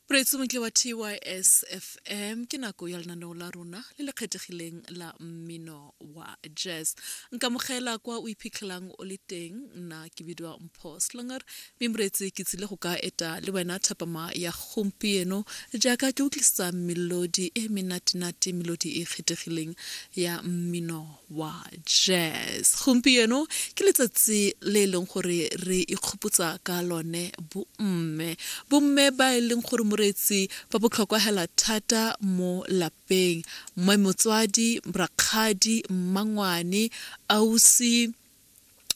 moreetsi montle wa tys fm ke nako ya lenaneo la rona le le kgethegileng la mmino wa jazz nkamogela kwa o iphitlhelang o le teng nna ke bidiwa mpho slonger mme moreetsi ke tsile go ka eta le wena thapama ya gompieno jaaka ke utlwisisa melodi e menatenate melodi e kgethegileng ya mmino wa jazz gompieno ke letsatsi le e leng gore re ikgopotsa ka lone bomme bomme ba e leng gore moreetsi ba botlhokwa hela thata mo lapeng mme motswadi rakgadi mmangwane ausi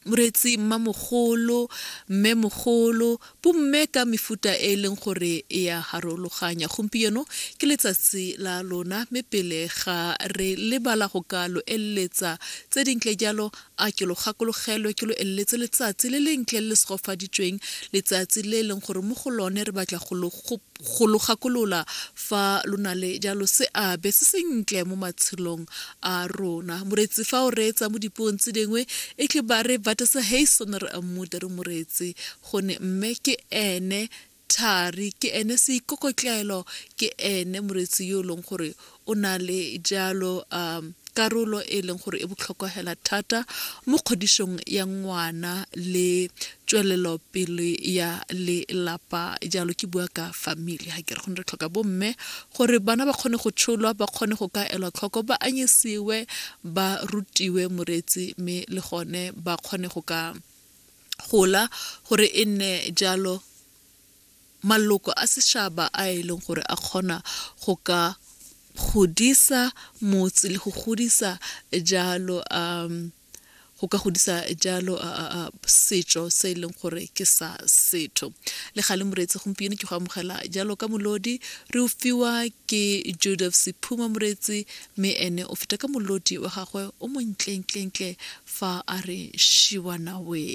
moreetsi mmamogolo mmemogolo bomme ka mefuta e e leng gore e ya harologanya gompieno ke letsatsi la lona mme pele ga re lebala go ka lo eleletsa tse dintle jalo a ke lo gakologelwe ke lo eleletse letsatsi le lentle le le segofaditsweng letsatsi le e leng gore mo go lone re batla go lo go lo gakolola fa lo na le jalo seabe se sentle mo matshelong a rona moretsi fa o reetsa mo dipuong tse dingwe e tle ba re batesa hei sone re ammuta re moretsi gone mme ke ene thari ke ene seikokotlelo ke ene moretsi yo e leng gore o na le jalo um karolo e e leng gore e botlhokwa hela thata mo kgodišong ya ngwana le tswelelopele ya lelapa jalo ke bua ka family ga ke re gone re tlhoka bomme gore bana ba kgone go tsholwa ba kgone go ka elwa tlhoko ba anyisiwe ba rutiwe moreetsi mme le gone ba kgone go ka gola gore e nne jalo maloko a sešaba a e leng gore a kgona go ka godisa motse le go godisa jalo um go ka godisa jalo setšo se e leng gore ke sa setho le ga le moreetsi gompieno ke go amogela jalo ka molodi re o fiwa ke joseph sephuma moreetsi mme ene o feta ka molodi wa gagwe o montlentlentle fa a re shiwanawe